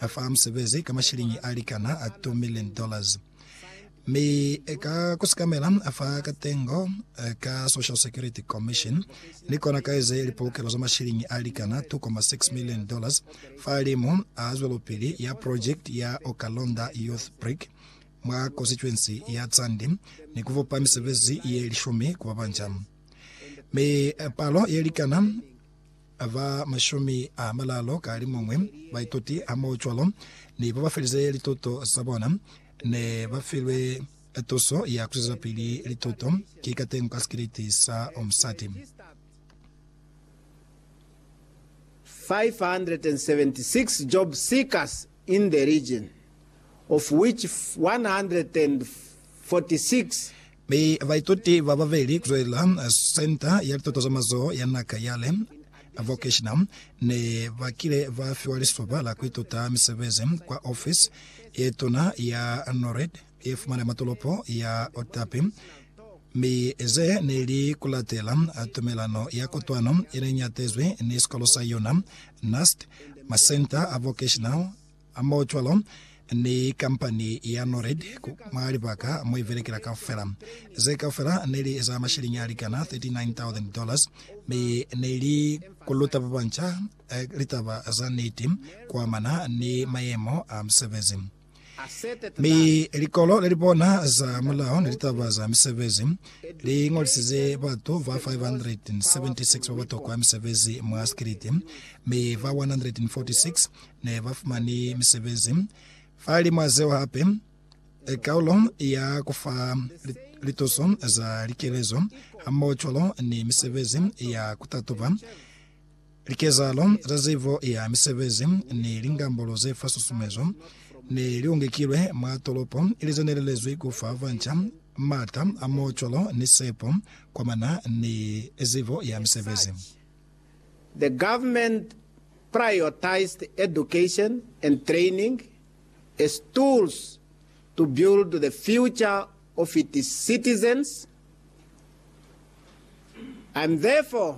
A fa musebezi ka mashiliñi a likana a 2 million dollars. Mi ka ku sikamela, a fa katengo ka Social Security Commission, ni kona ka eze lipolokelo za mashiliñi a likana 2.6 million dollars fahalimu a zwelopili ya project ya Okalonda Youth Brick mwa konsituensi ya Tsandi, ni ku fupa misebezi ye lishumi ku ba banca. Mi palo ye likana Ba ba mashumi a malalu ka limuñwi ba ituti hamohocwalo ni ba ba felize lituto za bona ne ba filwe tuso ya ku zwezapili lituto ki katengo ka sikiliti sa musati. 576 job seekers in the region, of which 146. Mi baituti ba babeli kuzwelela Senta ya Lituto za Mazoho ya Naka ya le Vocational ne ba kile ba fiwa lisoba la kuituta misebezi kwa ofisi ye tuna ya NORAD ye fumana mwa tolopo ya Otapi, mi ze ne li ku latela tumelano ya kotwano ye ne nyatezwi ni sikolo sa yona, NAST, masenta a vocational a mo cwalo ni kampani ya Nored ku mwa libaka mo i belekela kaufela. Ze kaufela ne li za masheleñi a likana 39,000 dollars, mi ne li ku luta ba banca litaba za niti ku amana ni mayemo a musebezi. Mi likolo lelipona za mulao ni litaba za misebezi li ngolisize batu ba 576 ba batokwa misebezi mwa sikiliti, mi ba 146 ne ba fumani misebezi. Falimwa zeo hape, kaulo ya kufa lituso za likelezo hamoho cwalo ni misebezi ya kutatuba Likezahalo za zibo ya misebezi ni lingambolo ze fa susumezo ne li ongekilwe mwa tolopo ili ze ne lelezwi ku fa banca m'ata a m'o cwalo ni sepo kwa mana ni zibo ya misebezi. The government prioritized education and training as tools to build the future of its citizens. I am therefore.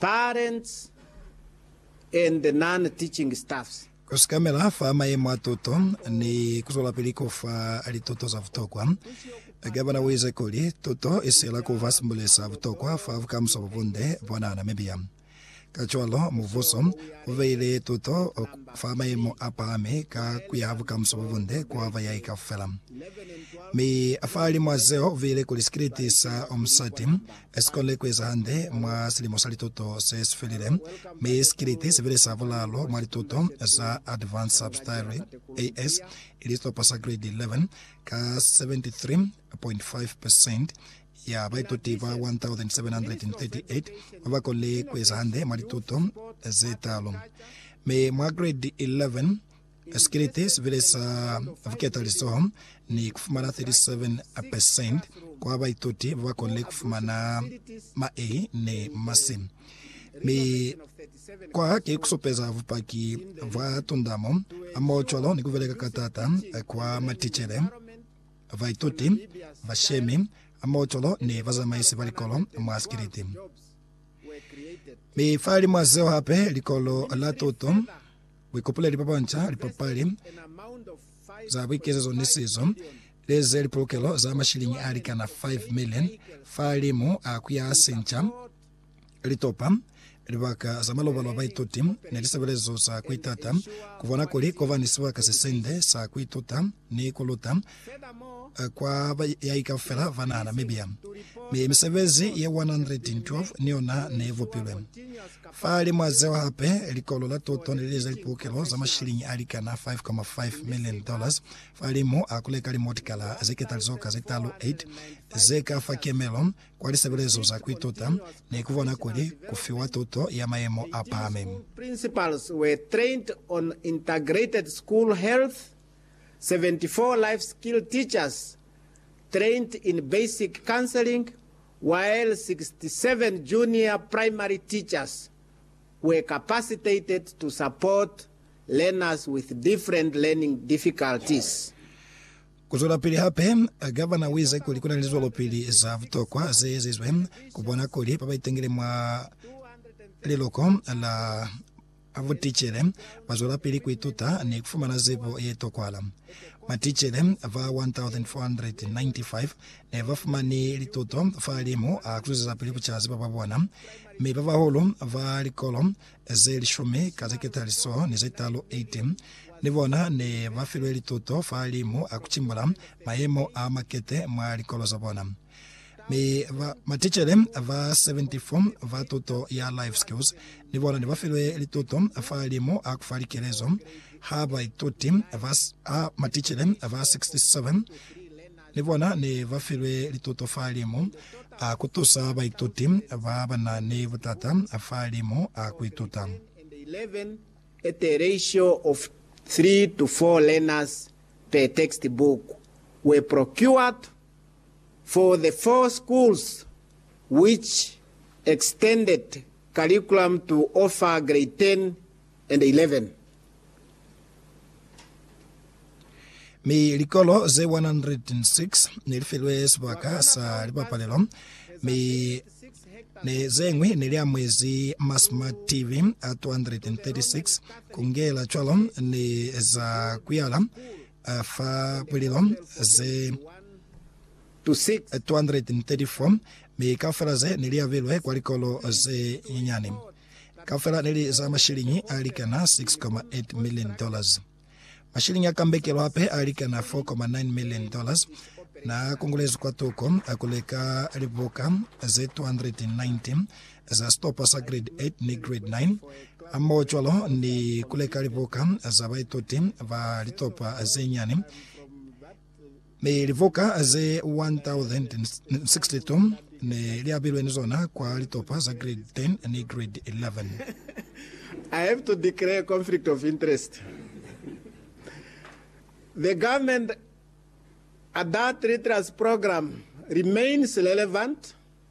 Parents and the non-teaching staffs. Ku sikamela fa mayemo a tuto ni ku zwelapili ku fa lituto za butokwa. Gavana u ize kuli, Tuto i siyela ku ba simbuleli sa butokwa fa bukamuso bo bunde bwa naha Namibia. Kacwalo, mubuso u beile tuto fa mayemo a pahami ka ku yaha bukamuso bo bunde kwa bayahi kaufela. Mi fa limo a zeo u beile kuli sikiliti sa Omusati Si kone ku eza hande mwa silimo sa lituto se si felile, mi si kiliti sibili sa bulaalu mwa lituto za Advanced Subsidiary, AS, ili sitopo sa Grade 11, ka 73.5 percent ya baituti ba 1,738 ba ba konile ku eza hande mwa lituto ze taalu. Mi mwa Grade 11, Esikiliti sibile sa vuketalizoho ni kufumana 37% kwa baituti babakonile kufumana ma A ni ma C. Mi kwa ki kusupeza bupaki bwa tundamo hamohocwalo ni kubeleka ka taata kwa maticele, baituti, bashemi hamohocwalo ni bazamaisi ba likolo mwa sikiliti. Mi fahalimwazeo hape, Likolo la Tuto Buikopoleli ba banca, lipapali za buikezezo ni sizo, leze lipolokelo za mashiliñi a likana 5 million fahalimu a ku ya sinca litopa, libaka za malobalo a baituti, ni lisebelezo za ku itata ku bona kuli ku ba ni sibaka se sinde sa ku ituta. ni ku luta kwa bayahi kaufela ba naha Namibia. Mi misebezi ye 112 ni yona ne bupilwe. Fa limwa zeo hape, likolo la tuto ne li lize lipukelo za mashiliñi a likana 5.5 million dollars fa limu a ku leka limotikala ze ketalizoka ze talu 8 ze ka fa kemelo kwa lisebelezo za ku ituta ni ku bona kuli ku fiwa tuto ya mayemo a pahami. 74 life skill teachers trained in basic counseling while 67 junior primary teachers were capacitated to support learners with different learning difficulties. Kuzwelapili hape, Gavana uize kuli kuna ni lizwelopili za butokwa zeezizwe kubona kuli babaitangile mwa liloko la A Buticele ba zwelapili ku ituta ni ku fumana zibo ye tokwahala. Maticele ba 1,495 ne ba fumani lituto fahalimu a ku zwezisapili ku ca zibo ba bona, mi ba bahulu ba likolo ze lishumi ka ze ketali so ni ze talu, 18, ni bona ne ba filwe lituto fahalimu a ku cimbula mayemo a makete mwa likolo za bona. Mi ba, maticele ba 74 ba tuto ya Life Skills ni bona ne ba filwe lituto fa limu a ku fa likelezo ha baituti ba, ha maticele ba 67 ni bona ne ba filwe lituto fa limu a ku tusa baituti ba ba na ni butata fa limu a ku ituta. 11 at a ratio of 3 to 4 learners per textbook were procured for the four schools which extended curriculum to offer grade 10 and 11. Mi likolo ze 106 ne li filwe sibaka sa lipapalelo, mi ne ze ñwi ne li amwezi ma smart TV a 236. Ku ngela cwalo ni za kuyala A fa mulilo ze 234, mi kaufela ze ne li abilwe kwa likolo ze nyinyani kaufela ne li za mashiliñi a likana 6.8 million dollars. Mashiliñi a kambekelo hape a likana 4.9 million dollars na kongolezwi kwa tuko ku leka libuka ze 290 za sitopa sa Grade 8 ni Grade 9 hamohocwalo ni kuleka libuka za baituti ba litopa ze nyani mi libuka ze 1062 ne li abilwe ni zona kwa litopa za Grade 10 ni Grade 11. I have to declare conflict of interest. The government adult literacy program remains relevant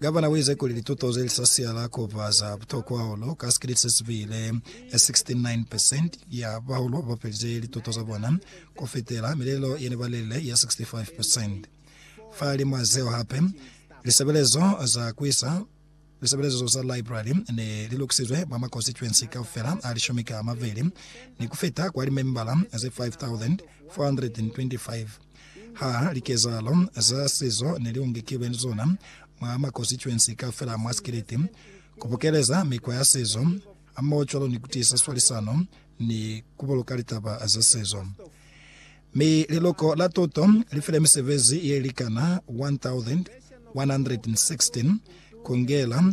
Gavana u ize kuli lituto ze li sa siyala ku ba za butokwa hahulu ka sikete se si bile 69 percent ya bahulu ba felize lituto za bona ku fitela milelo ye ne ba lelile ya 65 percent. Fahalimw'a zeo hape, lisebelezo za ku isa lisebelezo za library ne li lukisizwe mwa makonsituensi kaufela a lishumi ka a mabeli ni ku fita kwa limembala ze 5,425. Ha likezahalo za sizo ne li ungekilwe ni zona mwa makosituensi kaufela a mwa Sikiliti, ku bukeleza mikwa ya sizo hamoho cwalo ni ku tiisa swalisano ni ku buluka litaba za sizo. Mi Liluko la Tuto li file misebezi ye likana 1,116 ku ngela